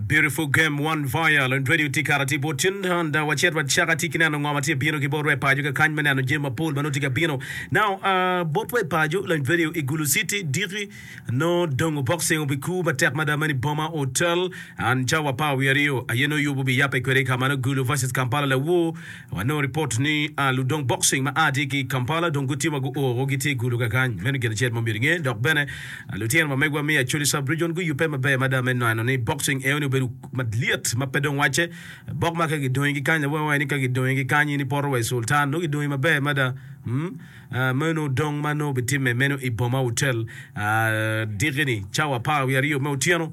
Beautiful game one vial and radio tye kara tye bot cen and uh, wacet wacaka tye kineno ngo ma tye bino ki bot we pajo ka kany me neno jami mapol ma nongo tye ka bino now uh, bot we pajo and radio i gulu city diki no dongo boxing obi ku matek mada mani boma hotel and cawa pa wi aryo aye no yubo bi yape kwede ka mano gulu versus kampala lawu Wanongo ripot ni ludong boxing ma a tye ki i Kampala dong gutye ma guo woko gitye i gudo kakany. Meno gin acel ma omyero inge. Dok bene, lutino ma megwa me Acholi Sub-Region guyubbe maber mada me neno ni boxing eno-ni obedo malyet ma pe dong wacce. Bok ma ka gidongi ki kany, lawengwa aye ni ka gidongi ki kany in ipoto wa i Sultan, nongo gidongi maber mada. Umm, meno dong ma nongo obitimme meno i Boma Hotel diki-ni, cawa apar wiye aryo me otyeno.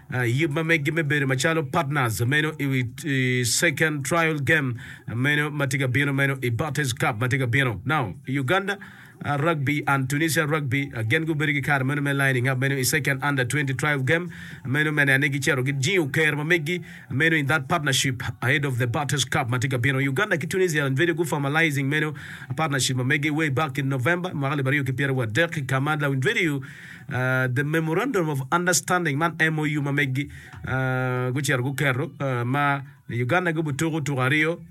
yub ma megi me bedo macalo partners meno i second trial game meno ma tye ka bino meno i Bates Cup ma tye ka bino. Now, Uganda Rugby and Tunisia Rugby gin gubedo ki kare meno me lining up meno i second under 20 trial game meno me neno ni gicito gijingo kero ma megi meno in that partnership ahead of the Bates Cup ma tye ka bino. Uganda ki Tunisia bedo gu formalizing meno partnership ma megi way back in November mwaka alip aryo ki pyerawadek ka ma Lawinverio The Memorandum of Understanding man MOU ma megi gucito guketo ma Uganda gibo tuko tuko aryo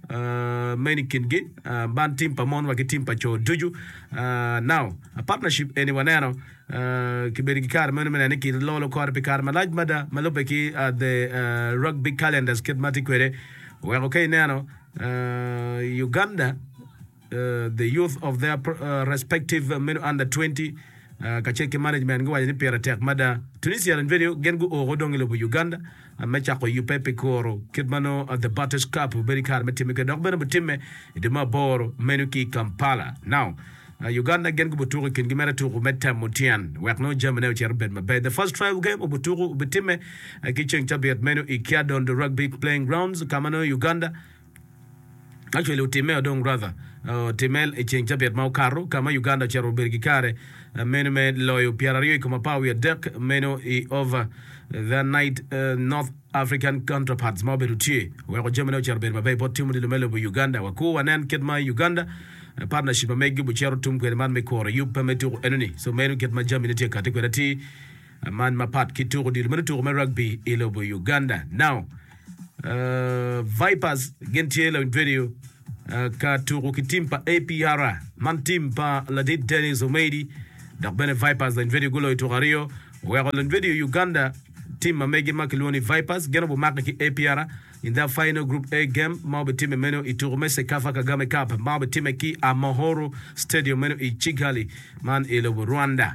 meno i kingi man tim pa mon wa ki tim pa co ducu. Now, a partnership eni waneno kibedo ki kare meno me neno ni kilolo kore pi kare malac mada ma lubbe ki the Rugby Calendars kit ma tye kwede weko ka ineno Uganda The youth of their respective meno under twenty kacel ki management guwaco ni pire tek mada Tunisia and venue gin guoko dong i lobo Uganda me cako yubbe pi kuro kit ma nongo The Butters Cup obedo i kare me timme kwede dok bene butimme i dwe me aboro meno ki i Kampala. Now Uganda gin gubutuko i kingi mere tuku me temo tyen wek nongo jamine ocito bed maber. The first trial game obutuku obitimme ki ceng cabit meno i Kyadondo Rugby Playing Grounds ka ma nongo Uganda Actually otimme o dong rather otimme i ceng cabit ma okato ka ma Uganda ocito obedo ki kare meno me loyo pyera aryo i kom apar wiye adek meno i over the night North African counterparts ma obedo tye oweko jamine ocito obedo maber bot tim odilo me lobo Uganda waku wanen kit ma Uganda partnership ma megi obicito tum kwede man me koro yub pa me tuku enoni so meno kit ma jamine tye kati kwede atir man mapat ki tuko odilo mere tuko me rugby i lobo Uganda. Now, uh, Vipers gin tye lawiny radio uh, ka tuko ki tim pa APR man tim pa ladit Dennis Omeidi dok bene Vipers lawiny radio guloyo tuko aryo oweko lawiny radio Uganda tim ma megi ma kilwongo ni Vipers gin obumake ki APR in the final group A game ma obitime meno i tuko me Sekafa Kagame Cup ma obitime ki Amohoro Stadium meno i Kigali man i lobo Rwanda.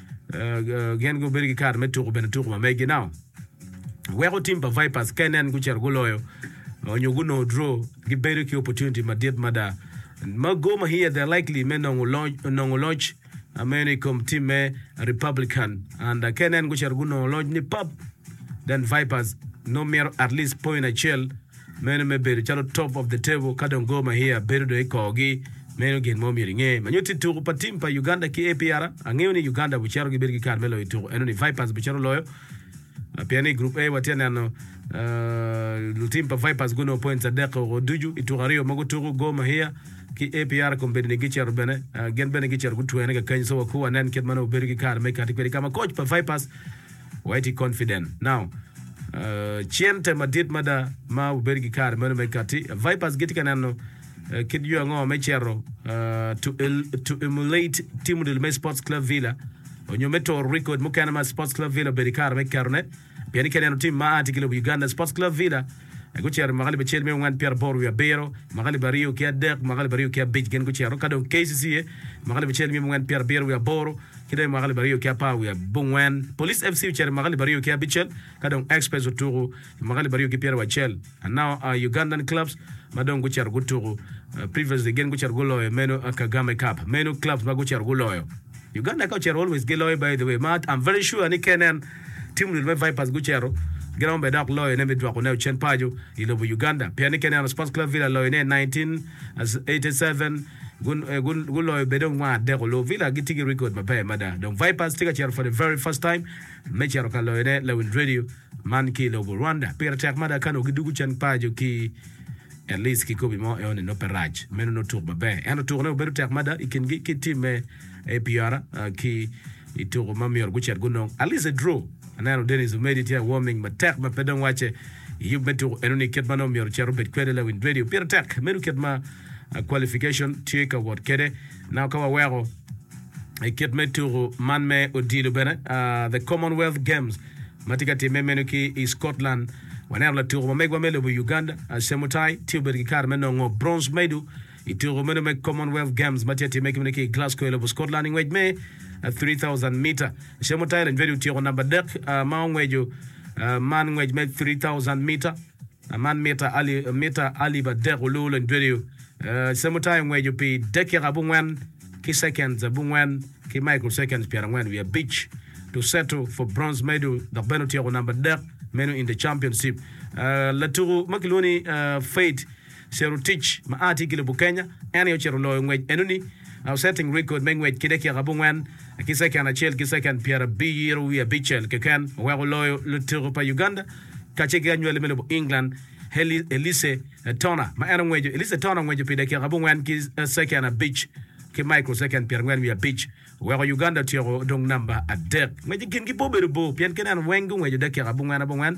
gin gubedo ki kare me tuku bene tuku ma megi now weko tim pa Vipers ka nen gucito guloyo onyo gunongo draw gibedo ki opportunity madit mada ma Gor Mahia they're likely me nongo loc, nongo loc uh, meno i kom tim me Republican and uh, ka nen gucito gunongo loc ni pap then Vipers no mito at least point acel Meno me bedo calo top of the table ka dong Gor Mahia bedo dong i korgi, meno gin mo myero inge. Ma nyutti tuku pa tim pa Uganda ki APR, angeyo ni Uganda bucito gibedo ki kare me loyo tuku, eno ni Vipers bucito loyo. Pien ni i Group A watye neno lutim pa Vipers gunongo points adek woko ducu i tuku aryo ma gutuku. Gor Mahia ki APR kong bedo ni gicito bene, gin bene gicito gutwene kakany. So wakur wanen kit ma nongo bedo ki kare me kati kwede ka ma coach pa Vipers Wait i confident now cente madit mada ma wubedo ki kare meno me kati. Vipers gitye ka neno kit yo ango me cito to emulate tim odilo me Sports Club Villa onyo me toro record mukene ma Sports Club Villa obedo i kare me ketone pien i keneno tim ma aa ki lobo Uganda Sports Club Villa Eka gucito i mwaka alip acel miya ongwen pyeraboro wiye abiro, mwaka alip aryo ki adek, mwaka alip aryo ki abic gin gucito, ka dong KCC aye i mwaka alip acel miya ongwen pyerabiro wiye aboro, ki dong i mwaka alip aryo ki apar wiye abongwen. Police FC ocito i mwaka alip aryo ki abicel, ka dong Express otuku i mwaka alip aryo ki pyeraboro acel. Now Ugandan clubs ma dong gucito gutuku, previously gin gucito guloyo meno Kagame Cup, meno clubs ma gucito guloyo. Uganda ka ocito always giloyo by the way, ma I'm very sure ni knn. Tim luel me Vipers gucito, giromo bene dok loyone me dwoko ne ocen paco i lobo Uganda pien ni Kenyatta Sports Club Villa loyo ne 1987 guloyo bene ongwa adek olu. Villa gitye ki record maber mada dong Vipers tye ka cito for the very first time me cito ka loyo ne Lawil Radio man ki i lobo Rwanda. Pire tek mada ka nongo gidugo cen paco ki at least kikobi mo eone nongo pe rac meno nongo tuk maber ento tukone obedo tek mada i kingi ki tim me APR ki i tuko ma myero gucit gunong. Alice Edro, Aneno Denis Omedi tye a warming matek ma pe dong wacce i yub me tuko enoni kit ma nongo myero ocit obed kwede lawiny radio. Pire tek medo kit ma qualification tye ka wot kwede. Now ka waweko i kit me tuko man me odilo bene, the Commonwealth Games ma tye ka timme meno ki i Scotland, waneno latuko ma megwa me lobo Uganda, Chemutai tye obedo ki kare me nongo bronze medal. I tuko meno me Commonwealth Games ma tye ka timme ki bene ki i Glasgow i lobo Scotland i ngwec me 3,000 mita, Chemutai Lenjwedi otyeko namba adek ma ongweco man ngwec me 3,000 mita man mita alip adek oluwu Lenjwedi. Chemutai ongweco pi dakika abongwen ki seconds abongwen ki microseconds pyerangwen wiye abic to settle for bronze medal dok bene otyeko namba adek meno in the championship. Latuku ma kilwongo ni Faith Cerutic, ma a tye ki lobo Kenya, en aye ocito loyo ngwec enoni, o setting record me ngwec ki dakiaka abongwen ki second acel ki second pyerabiro wiye abicel keken, oweko loyo lutuku pa Uganda kacel ki anywali me lobo England Elise Turner ma en ongweco Elise Turner ongweco pi dakiaka abongwen ki second abic ki micro second pyerangwen wiye abic, oweko Uganda otyeko odong namba adek. Ngwec i kingi pe obedo bor pien kene en weng gungweco dakiaka abongwen abongwen.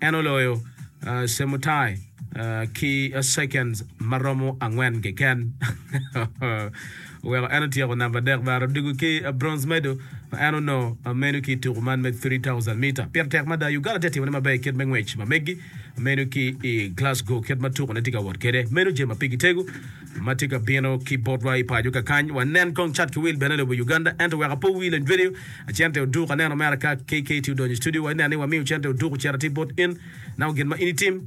en oloyo Chemutai ki seconds ma romo angwen keken. Oweko en otyeko namba adek bene. Odiko ki bronze medal ma en onongo meno ki i tuku man me three thousand meter. Pire tek mada, Uganda tye ka timone maber i kit me ngwec ma meggi meno ki i Glasgow kit ma tukune tye ka wot kwede. Meno jami ma pigi tego. ma tye ka bino ki botwa i paco kakany wa nen kong cat ki wil bene lobo Uganda ento wek apo wil en jwedeo acente oduk aneno mera ka KKT odonyo i studio wa inen ni wamiyo cente oduk ocito atir bot in nao gin ma in itim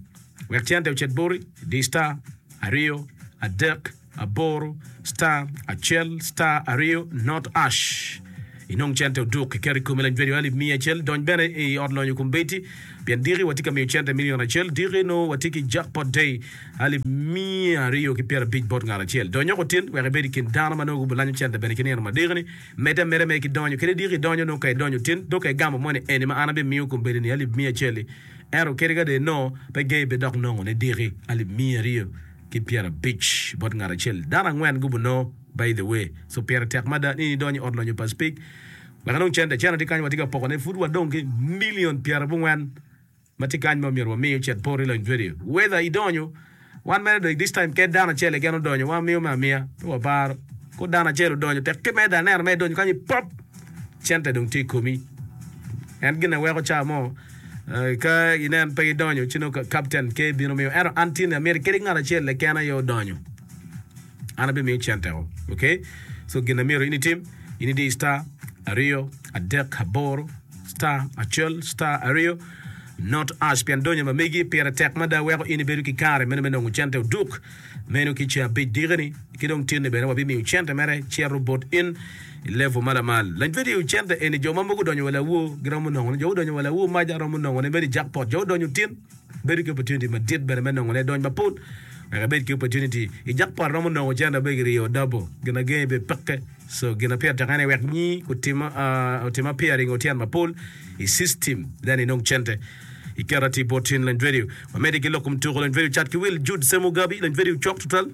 wek cente ocit boti di star aryo adek aboro star acel star aryo not ash. Inong cente oduk iketo i komi lajwedi alip miya acel dony bene i ot lonyo kombeddi pien diki watye ka miyo cente milion acel diki nongo watye ki jackpot day alip miya aryo ki pyera abic bot ngat acel donyok otin wek ibed i kin dano ma nongo gubilanyo cente bene ki nino madekini medde ameda mere ki donyo kadi diki idonyo nongo ka idonyo otin dok ka igamo moni eni ma an abimiyo kombeddi ni alip miya acel-li ento kadi ka dong nongo pe gei pe dok nongo ni diki alip miya aryo ki pyera abic bot ngat acel dano angwen gubunongo By the way, so pire tek mada ni idony i ot lonyo pa Speke wek inong cente. Cene tye kany, watye ka pokone. Pud wadong ki milion pyerabongwen ma tye kany ma myero wami ocit poro i lony vedio. Whether idonyo, wan mere dong this time ket dano acel keken odonyo, wamiyo me amiya. Pe waparo. Ko dano acel odonyo, tekke meda aneno ma idonyo kany i pop, cente dong tye i komi. En gin aye weko ca mo ka inen pe idonyo ci nongo Captain K bino miyo. Ento an tye ni amyero iked ki ngat acel keken aye odonyo. An abimiyo cen teko. Ok, so gin amyero in itim, in idi star aryo adek aboro star acel star aryo not ash pien donyo ma megi pire tek mada weko in ibedo ki kare meno me nongo cente oduk meno ki ce abic dike ni ki dong tin ni bene wabimiyo cente mere cito bot in i level ma lamal lany video cente eni jo ma mogo donyo wa lawo giromo nongo ne jo gudonyo wa lawo maja romo nongo ne meri jackpot jo gudonyo tin Bedo ki opportunity madit bene me nongo ledony mapol wek ibed ki opportunity i jackpot romo nongo cente abegi ryo double gin agengi bed peke so gin apyer tek ene wek nyi kutim otim appearing otyen mapol i system then inong cente i kero atir bot tin lany radio wamedi ki lok kom tuko lany radio cat ki wil Jude Semo Gabi lany radio cok tutwal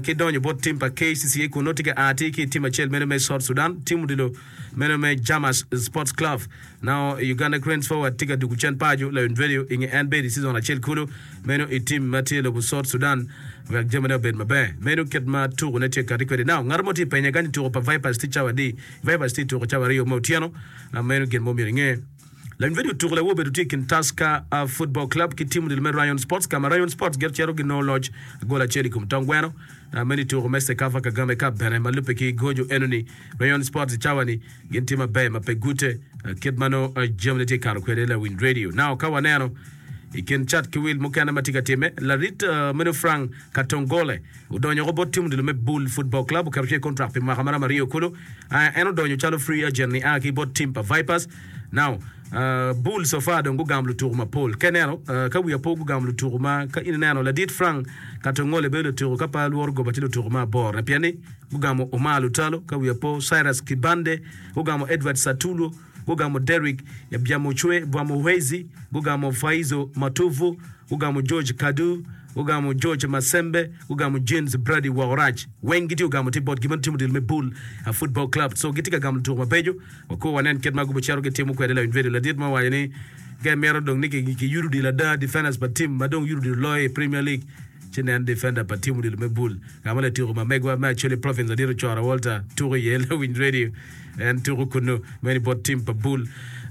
ki donyo bot tim pa KCCA kun nongo tye ka a atir ki i tim acel meno me South Sudan tim odilo Meno me Jamas Sports Club. Nao Uganda Cranes forward tye ka dwogo cen paco Lion Radio i nge en bedo i season acel kulu meno i team ma tye lobo South Sudan wek jamine obed maber meno kit ma tuko ne tye kati kwede. Nao ngat mo tye penya kany tuko pa Vipers tye cawa adi? Vipers tye tuko cawa aryo me otyeno meno gin mo myero inge. Leng vidio Tuko Lewor obedo tye i kin Tusker Football Club ki tim odilo me Rayon Sports ka ma Rayon Sports gire cito ginongo loc gol acel i kom tong gweno. Meno i tuko me Cecafa Kagame Cup bene ma lubbe ki goco enoni. Rayon Sports i cawani gin tye maber ma pe gute kit ma nongo jamine tye kato kwede. Lawiny Radio Now ka waneno I kin cat ki wil mukene ma tye ka timme, larit meno Frank Katongole odonyo woko bot tim odilo me Bull Football Club, oketo ci i kontrak pi mwaka maromo aryo kulu. En odonyo calo free agent nia ki bot tim pa Vipers. Now, Bull so far dong gugamo lutuku mapol. Ka ineno, ka wiya po gugamo lutuku ma ka in ineno, ladit Frank Katongole bedo latuku ka pa lworo goba tye lutuku me aborone pien ni gugamo Omar Lutalo, ka wiya po Cyrus Kibande, gugamo Edward Satulwo, gugamo Derrick Byamuchwe, Bwamu Hwezi, gugamo Faizo Matuvu, gugamo George Kadu, gugamo George Masembe, gugamo Jeans Brady Wokorac. Weng gitye ogamo tye bot gin ma timo dil me Bull Football Club. So gitye ka gamo lutuku mabeco. Wakur wanen kit ma gubicito gitimo kwede. Lawiny Vedio ladit mo owaco ni, Ka imito dong ni kiyudo odilo ada, defenders pa tim ma dong yudo odilo loyo i Premier League, ci nen defender pa tim odilo me Bull. Ka ma latyeko ma megwa me Acholi Province ladit Ocora Walter tuko iye. Lawiny Radio. En tuku kunu meno bot tim pa Bull.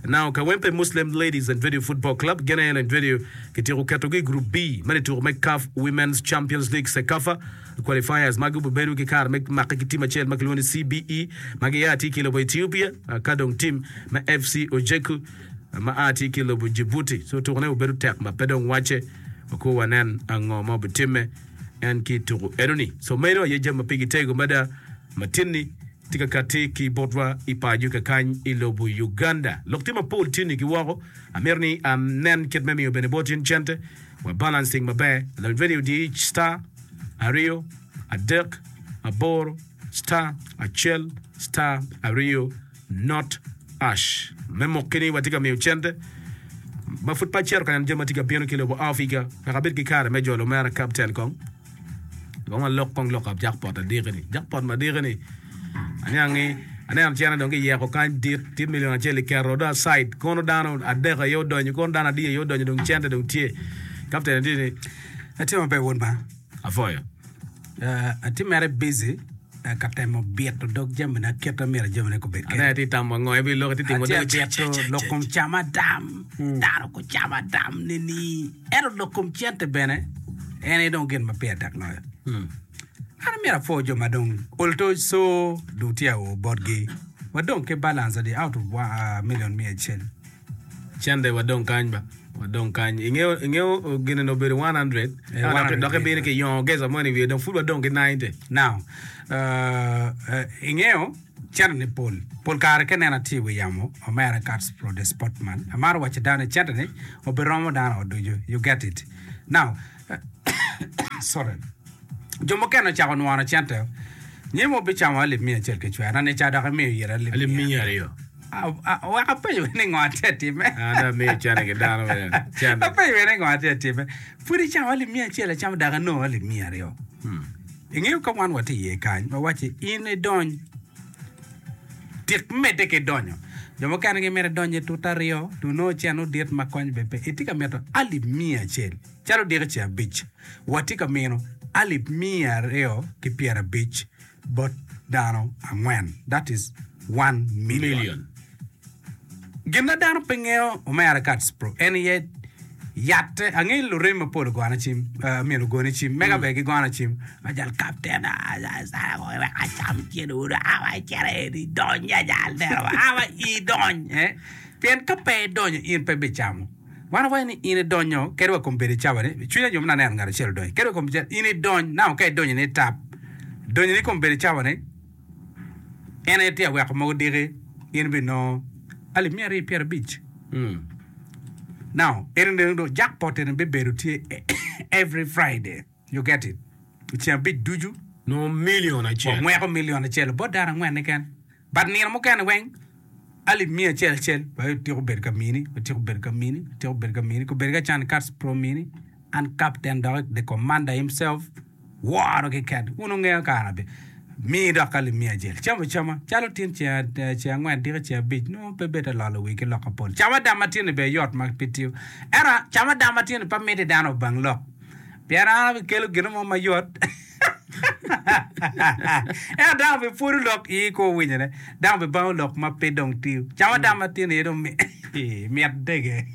Now Kawempe Muslim Ladies and Vedio Football Club gin aye and Vedio kityeko ketogi i Group B meno i tuku me CAF Women's Champions League, Cecafa, Qualifiers ma gubibedo ki kare me make ki tim acel ma kilwongo ni CBE ma gia ki i lobo Ethiopia ka dong tim me FC Ojeku ma a ki i lobo Djibouti. So tukune obedo tek ma pe dong wacce wako wanen ango ma obitimme en ki i tuku enoni. So meno aye jami ma pigi tego mada ma tinni. Tye ka katti ki botwa i paco kakany i lobo Uganda. Lok tye mapol tye nigi woko. Amito ni anen kit me miyo bene bot in cente wa balancing maber. Lony radio diic star aryo adek aboro star acel star aryo not ash me mokki ni watye ka miyo cente ma pud pe acito ka neno jami ma tye ka bino ki lobo Africa wek abed ki kare me jolo mera Captain kong. Dong walok kong lok ab jakpot adiki-ni. Jakpot madiki-ni, aniang ni aneno cene dong kiyeko kany dit, tye milion acel iketo do asaid, kono dano adek aye odonyo, kono dano adi aye odonyo dong cente dong tye. Kapten ati ni, Atye maber wod man. Afoyo. Ah, ati mere busy. ka temo bito dog jamina kit ma myero jamina gubed Ane kwede. ti tamo ngo ibi loko ti timo Atye dog bito lok kom cam adam, dano gucam adam nini. Ento lok kom cente bene en aye dong gin ma pire tek loyo. An amyero apwo jo ma dong oltoc co dong tye ao botgi, wadong ki balance adi out of wa- ah, million miya acel. Cente wa dong kany ba. Wa dong kany. I ngeyo, i ngeyo uh, gine ni obedo 100. Eh, Eka dok- 100 Dok ibino ki yongo geza mo ni wiye dong pud wa dong ki 90. Now, uh, uh, i ngeyo, cente ni pol. Pol kare ka inena tye i wi yamo, omera Katz Prode Sportman, amaro wacci dano ni cente ni obiromo dano o ducu. You get it? Now, uh, sorry. Jo mukene ocako nwono cente o. Nyim obicamo alip miya acel ki cwera, na ni ca dok imiyo ira alip Alip miya. miya aryo. Apenyo wene ngo atye atime. Apenyo wene ngo atye atime. Pwod icawa alip miya acel acamo dok anongo alip miya aryo. Hmm. Ingeyo ka wan watye iye kany ma wacce in idony tik medde ki donyo. Jo mukene gimito idony i tut aryo, tuno ocen odit ma kony be pe. Itye ka mito alip miya acel. Calo diko ce abic. Watye ka mino alip miya aryo ki pyerabic. bot dano angwen, that is, one million. Gin ma dano pe ngeyo omera Kats Pro en aye yatte. Angeyo lurem mapol ogona cim, myero ogone cim, mega ber gigona cim ma jal kapten wek acam cen uru awa icito eni idony ya jal dero awa idony eh pien ka pe idonyo in pe bicamo. Wan wawaco ni in idonyo kadi wa kom bedo icabane, pi cwiny anyomone aneno ngat acel odonyo kadi wa kom bedo icabane. In idony nao ka idonyo ni itap, donyo ni kom bedo icabane, en aye tye aweko mogo diki, in bi nongo alip miya aryo pyera abic. Nao, eno dong jackpot eno bibedo tye every Friday. You get it? I ceng abic ducu. Nongo million acel. Wangweko million acel bot dano angwen keken. But nino mukene weng alip miya acel acel. Wek otyeko bedo ka mini, otyeko bedo ka mini, otyeko bedo ka mini, kobedo ka can cats pro mini. An captain dok the commander himself woro ki ket. Wun wungeyo kara be. Mii dok alip miya acel. Cam acama. Calo tin ceng ceng angwen diki ceng abic nongo pe bed alolo wii ki lok apol. Cam adam matini ber yot ma pe tiyo. Ento cam adam matini pe miti dano obang lok. Pien an abikelo gin mo ma yot, ento dano bipwodo lok i kwo winyone, dano bibango lok ma pe dong tiyo. Ca ma dano matino iye dong mit dege.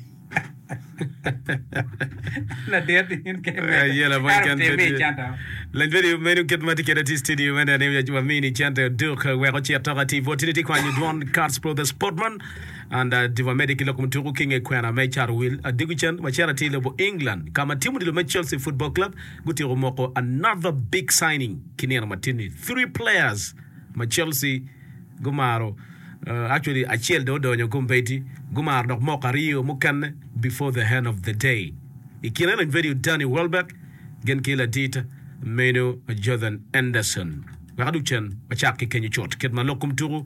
Ladit in kene. Eh, iya la boy Ero kan timi i center. Lanjwadi menu kit ma tye kede ti studio mene ni wamini center duk wek ocit tok ati bot tini ti kwanyo dwon Cards Brothers Portman and adiko amedde ki lok mutuku ki nge kwena me Charlwil adiko cen macera tye lobo England ka ma tim odilo me Chelsea Football Club gutyeko moko another big signing ki nino matini three players ma Chelsea gumaro actually acel dong odonyo kombeddi gumaro dok moko aryo mukene before the end of the day i kine eni vedio Danny Welbeck gin ki ladit meno Jordan Henderson wek adok cen wacak ki kenyo cut kit ma lok kom tuku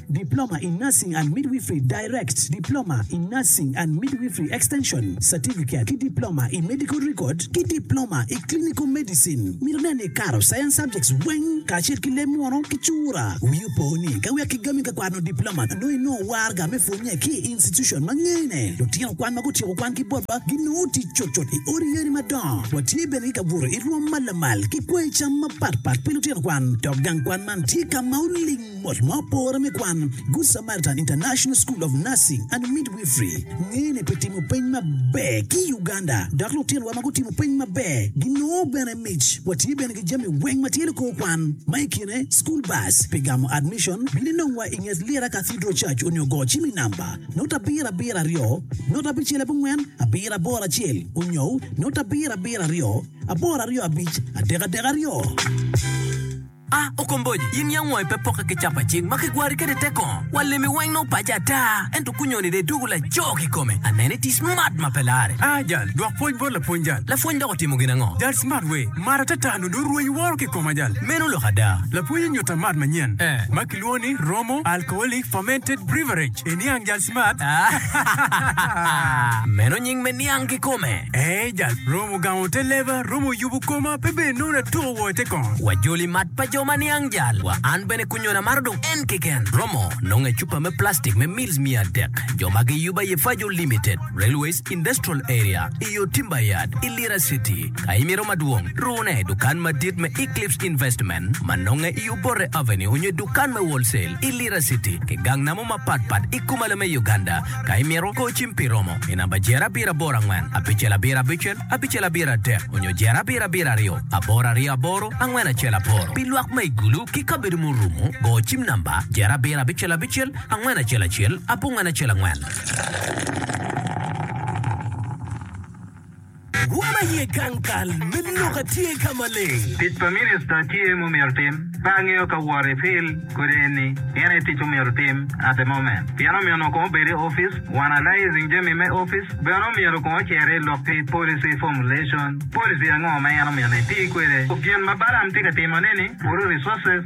Diploma in Nursing and Midwifery, Direct, Diploma in Nursing and Midwifery Extension, Certificate, ki Diploma i Medical Record ki Diploma i Clinical Medicine. Mito nen ni ikato Science subjects weng kacel ki leb munu ki cura. Wii opo ni ka wek kigami ka kwano Diploma nongo inongo warga me pwonye ki i institution ma ngene. Lutino kwan ma gutyeko kwan ki botwa ginongo tic cutcut i odi yeni madongo. Watye bene ki kabuto i rwom ma lamal ki kwango cam mapatpat pi lutino kwan dok gang kwan man tye ka ma oling. Bot ma opore me kwan, Good Samaritan International School of Nursing and Midwifery ngene pi timo peny maber ki i Uganda, dok lutinwa ma gutimo peny maber ginongo bene mic. Watye bene ki jami weng ma tye likor kwan, ma i kine school bus pi gamo admission, bini nongwa i nget Lira Cathedral Church onyo go cim i namba note abiro abiro aryo note abicel abongwen abiro aboro acel onyo note abiro abiro aryo aboro aryo abic adek adek aryo. A Okomboji, in yam wangi pe pokke ki capa cing ma kigwari kwede i te kongo? Wa limi weng nongo paci ata, ento kunyoni dong idwogo laco kikome. Aneno iti smart ma pe larre. A Jal, dwok pwoc bot lapwony Jal. Lapwony dok otimo gin ango? Jal, Smart wee, mar ata ata nongo dong rwenyi woro kikoma Jal. Meno lok ada. Lapwony onyuta mat manyen ma kilwongo ni Romo Alcoholic Fermented Beverage. Iniang Jal. Meno nying me niang kikome. Ee, jal romo gamo te leba, romo yubo koma, pe bene nongo latoko woko i te kong. Wa joli mat pa jo ma niang jal wa. An bene kunyona maro dong en keken. Romo nonge cupa me plastic me mils miya adek. Jo ma giyuba iye Fajo Limited, Railways Industrial Area, i yo Timberyard i Lira City. Ka imito madwong, rune i dukan madit me Eclipse Investment ma nonge i Obote Avenue onyo i dukan me Wholesale. i Lira City ki gang namo mapat pat i Kumalo me Uganda. Ka imito, go cim pi romo i namba Jer abiro aboro angwen, abicel abiro abicel, abicel abiro adek, onyo Jer abiro abiro aryo, aboro aryo aboro, angwen acel aboro. Pi lwak ma i gulu ki kabedo ma orumo, go cim namba Jer abiro abicel abicel, angwen acel acel, abongwen acel angwen. Rwom aye gang kal me lok a tye ka maleng. Tic pa minista tye mumyero tim. Pe angeyo ka wor i pil kodi enni en aye tic omyero tim at the moment pien omyero onongo kong obed i office wan alysing jami me office bene omyero kong ocer i lok ki policy formulation policy ango ma en omyero ni eti kwede ku gin ma Balaam tye ka timo neni kuru resources